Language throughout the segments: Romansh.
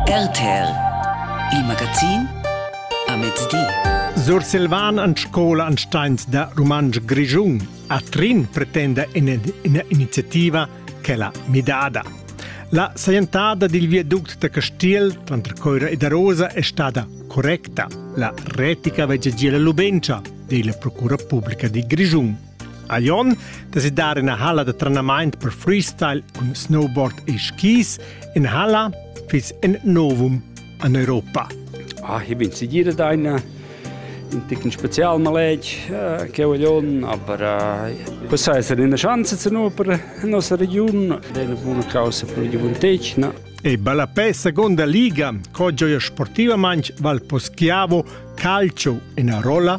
RTL Il magazin a mezdi. Sursilvan an scola an steins da Rumantsch Grischun a Trin pretenda iniziativa che la midada. La sajentada dil viaduct da Castiel tranter Coira ed Arosa è stada correcta. La retica veggia gia la lubentscha, di la Procura Pubblica di Grischun. A Lyon desi dar ina halla da trenamaint per freestyle cun snowboard e skis. In halla fiss in novum an Europa. Ah, ich bin sicher da eine in ticken Spezialmalage äh, che vogliono, aber äh, possa essere una chance zu noi per la nostra regione, ed è una buona causa per la gioventù. No? E ballapè seconda liga, co gioia sportivamente val poschiavo calcio in Arola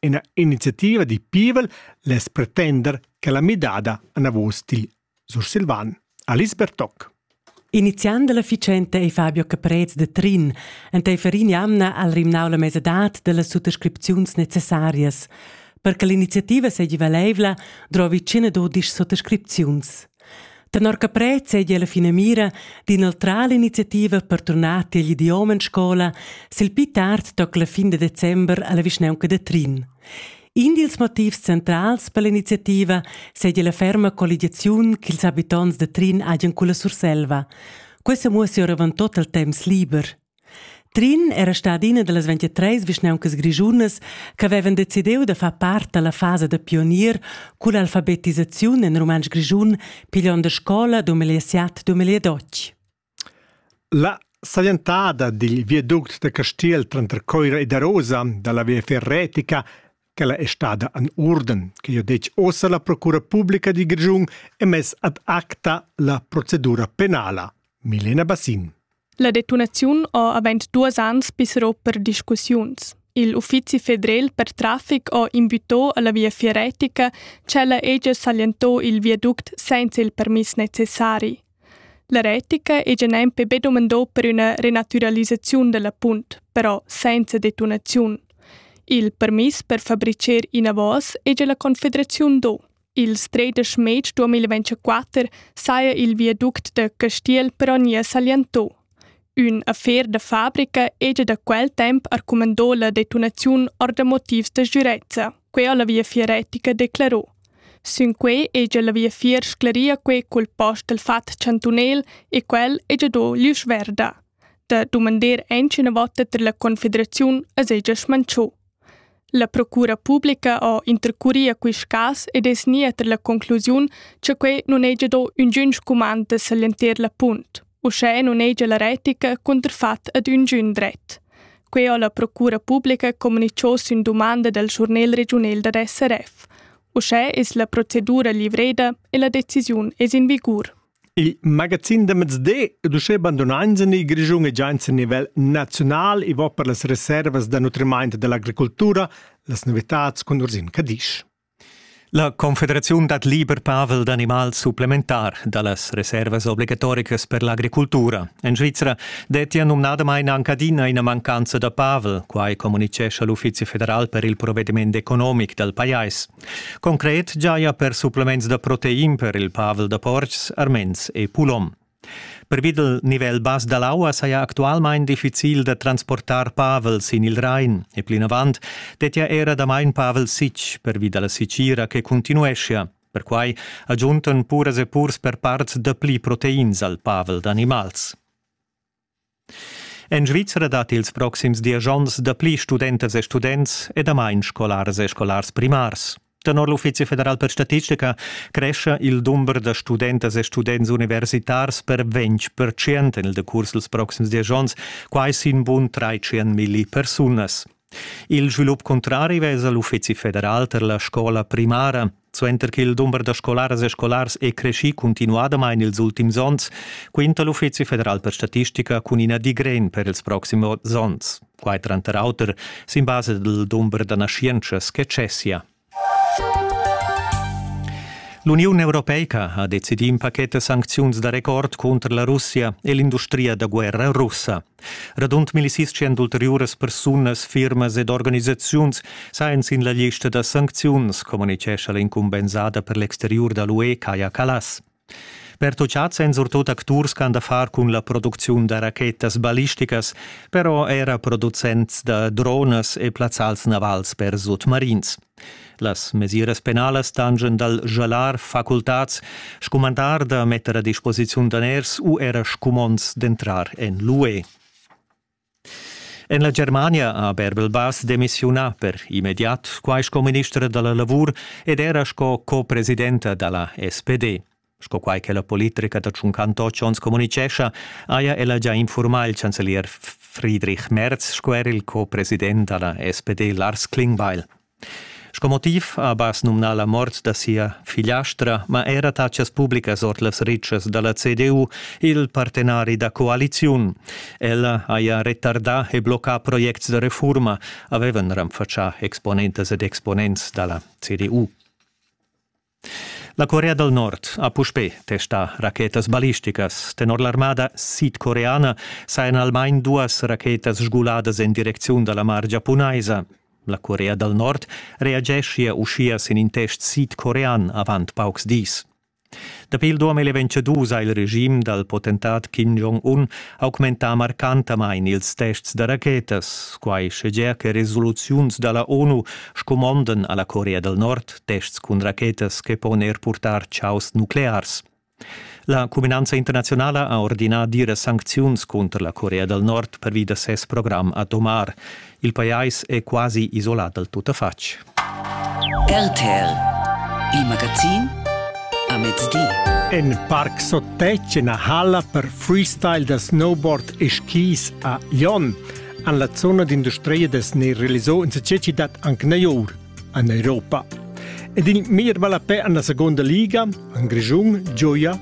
ina iniziativa di pievel less pretender che la midada anavos digl sursilvan Alice Bertoc. Iniziant dalla ficenta ei Fabio Caprez de Trin enteifer in'jamna al rimnau la mesadad dellas suttascripziuns necessarias. Per che l'iniziativa seigi valeivla, drovi tschina dudisch suttascripziuns. Tenor Caprez seigi la finamira d'inoltrar l'iniziativa per turnar tiegl idiom en scola sil pli tard toc la fin de december alla vischnaunca da Trin. In dils motivs centrals per l'iniziativa seigi la ferma colligiaziun ch'ils habitonts da Trin hagien culla Surselva. Questa muossi oravon tot il temps liber. Trin era stada ina dallas 23 vischnauncas grischunas ch'havevan decidiu da far part alla fasa da pionier culla alfabetisaziun en rumantsch grischun, pigliond a scola dumegliasiat dumegliadotg. La saglientada dil viaduct da Castiel tranter Coira ed Arosa dalla Viafier Retica ch'ella è stada en urden, che ha detg ossa la Procura Publica di Grischun e mess ad acta la procedura penala. Milena Bassin. La detunaziun ha avent duas ans pisserò per discussiuns. Il uffizi federal per traffic ha invitò alla viafier retica, cella ella s'allientò il viaduct senza il permiss necessari. La retica ei gia nempe be dumandau per üna renaturalisaziun dalla punt, però senza detonaziun. Il permiss per fabricher inavos ei gia la Confederaziun do. Il Strait da Schmed 2024 saja il viaduct da Castiel però nie salientò. Ün affer da fabrica hegia da quel temp arcumandò la detonaziun or da motivs da sgürezza, quai ha la Viafier retica declerò. Sün quai hegia la viafier scleria quei cul post dal fat chantunel e quel hegia do l'isch verda. Da dumander aint üna vota ter la confederaziun as hegia schmanchò. La procura publica ha intercurì a quist cas ed es gnida ter la conclusiun cha quai nun hegia do üngün scumand da s'allenter la punt. Uschè nun hegia la retica cunterfat ad üngün dret. Quai ha la procura publica comunicho sün dumanda dal schurnel regiunel dad SRF. Uschè es la procedura livreda e la decisiun es in vigur. Il magazin da mezdi ed uschè bandunains en il Grischun e giains a nivel naziunal i va per las reservas da nutrimaint da l'agricultura, las novitads cun Ursin Cadisch. La Confederaziun dat liber pavel d'animal supplementar da las reservas obligatoricas per l'agricultura. En Svizra dettia numnadamain anche adina ina mancanza da pavel, quai communitgescha l'Uffizi federal per il provvediment economic dal pajais. Concret giaja per supplements da protein per il pavel da portgs, arments e pulom. Per vid il nivel bas da l'aua saja actualmain difficil da transportar pavel sin il Rain e plinavant dettia era damain pavel sitg per vi da la sitgira che continueschia. Perquai agiuntan puras e purs per parts dapli proteins al pavel d'animals. En Svizra dat ils proxims diesch onns dapli studentas e students e damain scolaras e scolars primars. Tenor l'Uffizi federal per statistica crescha il dumber da studentas e students universitars per 20 en il decurs dals proxims diesch onns, quai sin bun 300 milli persunas. Il svilup cuntrari vesa l'Uffizi federal per la scola primara. Suenter ch'il dumber da scolaras e scolars è creschì cuntinuadamain ils ultims onns, quinta l'Uffizi federal per statistica cun ina digren per ils proxims onns. Quai tranter auter sin basa dal dumber da naschientschas che cessia. L'Uniun europeica ha decidì in paquet da sancziuns da record cunter la Russia e l'industria da guerra russa. Radund millisitschen d'ulteriuras persunas, firmas ed organisaziuns sajan sin la lista da sancziuns, communitgescha l'incumbensada per l'exteriur da l'UE Kaja Kallas. Pertutgads èn surtut acturs ch'han da far cun la producziun da rachetas ballisticas, però era producents da dronas e plazzals navals per sutmarins. Las mesiras penalas tangen dal jalar facultads, scumandar da metter a disposiziun daners u era scumonds d'entrar en l'UE. En la Germania ha Bärbel Bass demissiunà per immediat, quai sco ministra da la lavur ed era sco co-presidenta da la SPD. Sco quai che la politica da Tschuncan Totsch onns communitgescha, haja ella già infurmà il chancelier Friedrich Merz sco er il co-president da la SPD Lars Klingbeil. Sco motiv ha Abbas numnà la mort da sia figliastra, ma era tatschas publicas ord las ritschas da la CDU il partenari da coaliziun. Ella haja retardà e bloccà projects da refurma, avevan renfatschà exponentas ed exponents da la CDU. La Corea dal Nord ha puspè testà rachetas ballisticas. Tenor l'armada sidcoreana sajan almain duas rachetas sguladas en direcziun da la mar giapunaisa. La Corea dal Nord reageschia uschia sin in test sidcorean avant paucs dis. Dapi il 2022 ha il regim dal potentat Kim Jong-un augmentà marcantamain ils tests da rachetas, quai sche gea che resoluziuns da la ONU scumondan a la Corea dal Nord tests cun rachetas che pon er purtar chaos nuclears. La cuminanza internazionala ha ordinà dire sancziuns contro la Corea del Nord per da ses programm atomar. Il pajais è quasi isolat dal tuttafatg. RTL, il magazin a mezdi. En Park Sotec na halla per freestyle da snowboard e skis a Lyon an la zona d'industria des ne realizò in sececi dat anc neor. en Europa. Ed in mir vala pe en la seconda liga, en Grigiun, gioia,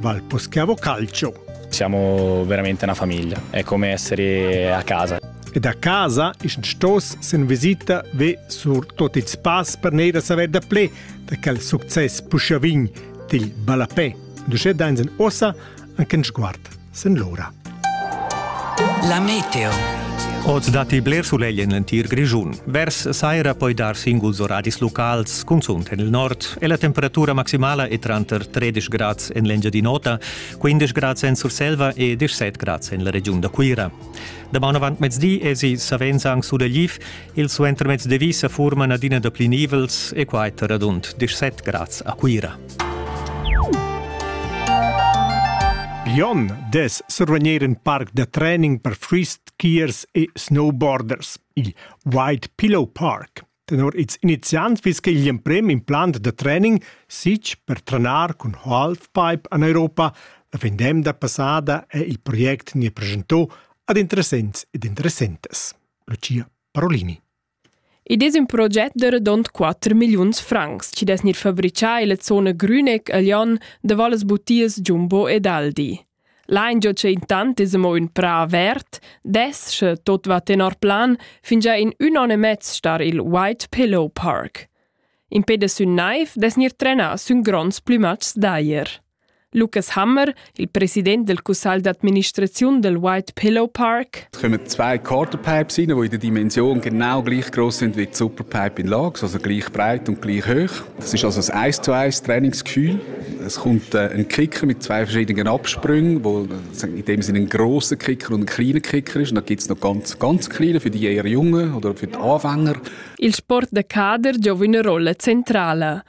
val Poschiavo Calcio. Siamo veramente una famiglia, è come essere a casa. Ed a casa ist stos sen visita ve sur tot il spass per neira saver da ple da quel succes pushavin til Balapé. Du sche dein sen ossa anche in sguard sin l'ora. La meteo. Oz datti bler sulegl en l'entir Grischun. Vers saira poi dar singuls oradis locals, cunzunt en il nord, e la temperatura maximala è tranter 13 grads en l'Engiadin'Ota, 15 grads en Surselva e 17 grads en la regiun da Cuira. Damaun avant mezdi èsi savens anc sulegliv, il suentermezdi vi sa furman adina dapli nivels e quai tar radund 17 grads a Cuira. Glion dess survegnir in parc da training per freeskiers e snowboarders, il White Pillow Park. Tenor ils iniziants fiss quel l'emprim implant da training sitg per trenar cun halfpipe en Europa. La vendemda passada è il project ne presentò ad interessents ed interessentas. Lucia Parolini. Id es ün proget da radund quatter milliuns francs chi dess gnir fabrichà illa zona Grüneck a Lyon davo las butias Jumbo ed Aldi. L'aingio cha intant es amo ün prà avert dess, sche tot va tenor plan, fingià in ün on e mez star i'l White Pillow Park. Impè da sün naiv dess gnir trenà sün gronds plümatschs d'ajer. Lukas Hammer, il president del cussagl d'administraziun del White Pillow Park. Es kommen zwei Kartenpipes rein, die in der Dimension genau gleich groß sind wie die Superpipe in Lage, also gleich breit und gleich hoch. Das ist also ein 1 zu 1 Trainingsgefühl. Es kommt äh, ein Kicker mit zwei verschiedenen Absprüngen, wo in dem Sinne ein grosser Kicker und ein kleiner Kicker ist. Und dann gibt es noch ganz, ganz kleine für die eher Jungen oder für die Anfänger. Il sport de kader gioca una rolla centrale.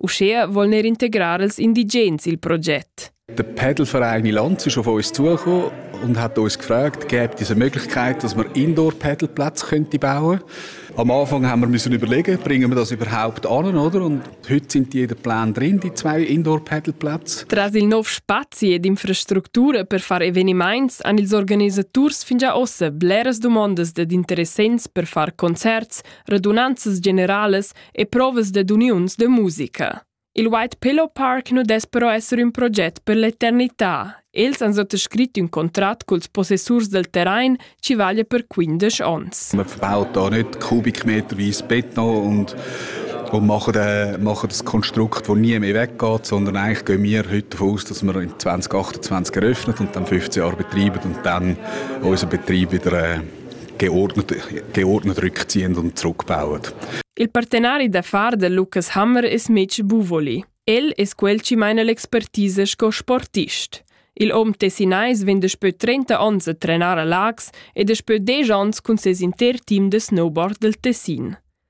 Uschea voln er integrar els indigens il proget. Der Padelverein in Lanz ist auf uns zugekommen und hat uns gefragt, gäbe es eine Möglichkeit, dass wir Indoor-Padelplätze könnte bauen Am Anfang haben wir müssen überlegen, bringen wir das überhaupt an, oder? Und heute sind jeder Plan drin, die zwei Indoor-Padelplätze. Tras il nov spazi ed infrastructura per far eveniments han ils organisaturs fin già ossa bleras dumondas dad interessents per far concerts, radunanzas generales e provas dad uniuns da musica. Il White Pillow Park nu dess però esser ün proget per l'eternità. Els han sottoscrit ün contrat culs possessurs del terrain chi vaglia per 15 ons. Man verbaut da nicht kubikmeterweise Beton und, und machen, äh, machen ein Konstrukt, das nie mehr weggeht, sondern eigentlich gehen wir heute davon aus, dass wir in 2028 eröffnet und dann 15 Jahre betreiben und dann unseren Betrieb wieder äh, geordnet rückziehen und zurückbauen. Il partenari d'affar de Lucas Hammer es Mitch Buvoli. El es quel chi maina l'expertise sco sportist. Il hom tessinais vegn daspö 30 ons a trenar a Lax ed daspö 10 ons cun ses inter team de snowboard del Tessin.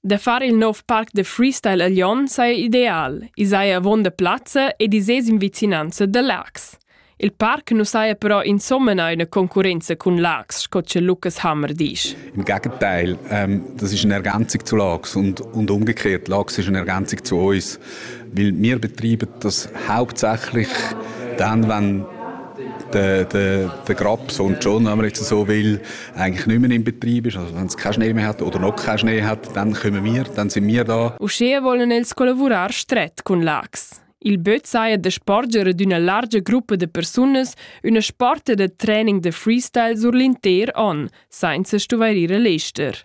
Da far il nov parc da freestyle a Lyon saja ideal. I saja avon da plazza ed i sez in vicinanza da Laax. Il parc nu saja però insomma eine Konkurrenz cun Laax, sco che Lukas Hammer dice. Im Gegenteil, ähm, das ist eine Ergänzung zu Laax und, und umgekehrt. Laax ist eine Ergänzung zu uns, weil wir betreiben das hauptsächlich dann, wenn der, der, der Grabs und schon, wenn man jetzt so will, eigentlich nicht mehr im Betrieb ist, also wenn es keinen Schnee mehr hat oder noch keinen Schnee hat, dann kommen wir, dann sind wir da. Uschè wollen els collavurar stret cun Lax. Il böt saja de sporgere d'üna largia gruppa de persunas üna sporta de training de freestyle sur l'inter on, sainza stuvairire l'ester.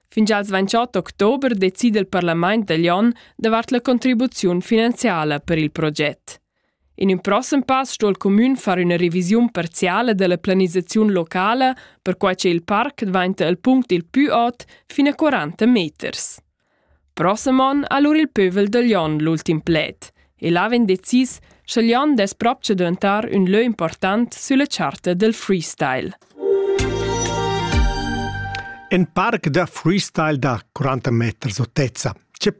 Fin als 28 october decida il parlament degl onn davart la contribuziun finanziala per il proget. In in prossem pass sto il comün far üna revisiun parziale della planisaziun locala, perquai che il parc dvainta il punct il pü ot fin a 40 meters. Prossem on ha lur il pövel degl onn l'ultim pled, e l'ha vegn decis sche Jon dess propcha daventar ün lö important sülla charta del freestyle. In parc da freestyle da 40 meters otezza. Che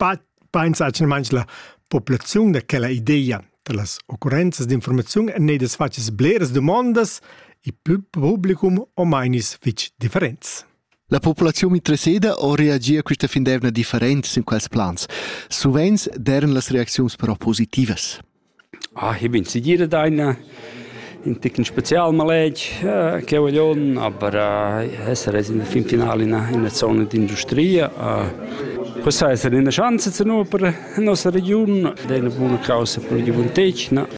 pensa manch la populaziun da quella idea da las occurrenzas d'informaziun en nedas facis bleras domandas e publicum o mainis fitch differents. La populaziun interesseda ò reagia quista findevna different sin quels plans. Suvenz deran las reacziuns però positivas. Ah, ich bin sicher einer in ticken spezial maleg che vogliono aber essere in der Finale in einer Zone d'industria Questa essere una chance per la nostra regione, è una buona causa per la gioventù.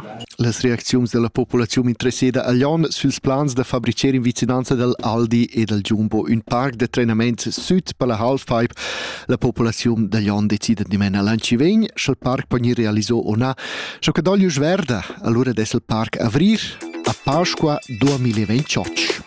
Las reacziuns dalla populaziun interesseda a Glion sils plans da fabricer in vicinanza dal Aldi e dal Jumbo ün parc da trenament süt per la Halfpipe. La populaziun da Glion decida dimena l'anci vegn, sch'el parc po gnir realiso o na. Scho che doglius verda, allura dess il parc avrir a Pasqua 2028.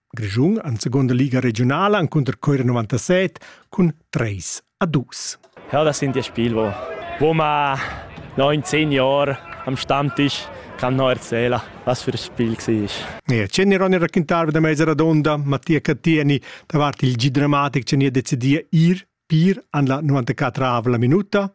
Grischun en seconda liga regiunala encunter Cuira 97 cun 3 a 2. Ja, das sind die Spielwo, wo man 19 Jahre am Stammtisch kann noch erzählen, was für ein Spiel war. Ja, c'è Ronny raccontava da mezza radonda, Mattia Cattieni, davanti il G-Dramatic, ci ha deciso ir per an la 94 minuta.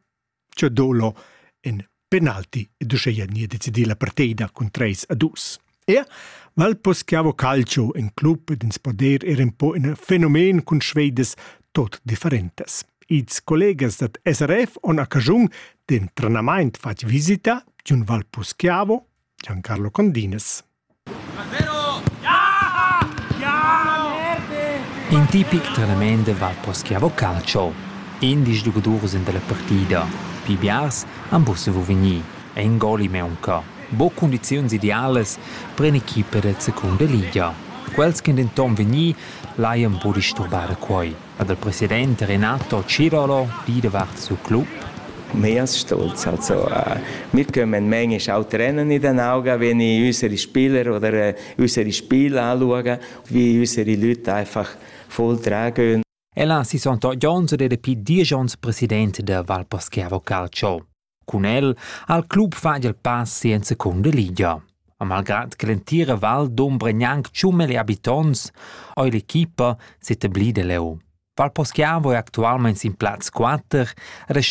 Che dolo in penalti ed uschea gnir decidida la partida cun treis a dus. Er Valpos che ha vo calcio in club ed ins poder er un po in fenomen cun Schweides tot differentes. Ils collegas dat SRF on occasiun d'en trenamaint fat visita d'un Valpos Chiavo, Giancarlo Condines. In tipic trenament da Vapo Schiavo Calcio. Indisch giugadurs en dalla partida. Pli biars han buca saviu vegnir. In gol in meunca. Buca cundiziuns idealas per in'equipa da secunda liga. Quels ch'ein denton vegni, laien buca disturbare quei. ha dal president Renato Cirolo di davart siu club. Mias stolz also mitgem en menge schau trennen in den auga wenn ich unsere Spieler oder unsere Spiel anschaue wie unsere Leute einfach voll tragen. Ella si sono jones ed è più dieci onns presidente der Valposchiavo Calcio. Cun el ha il club fatg il pass en secunda ligia. A malgrad che l'entira val dombra gnanc tschummel e habitonts, ha l'equipa s'etablida leu. Val Poschiavo è actualmein sin plaz 4 e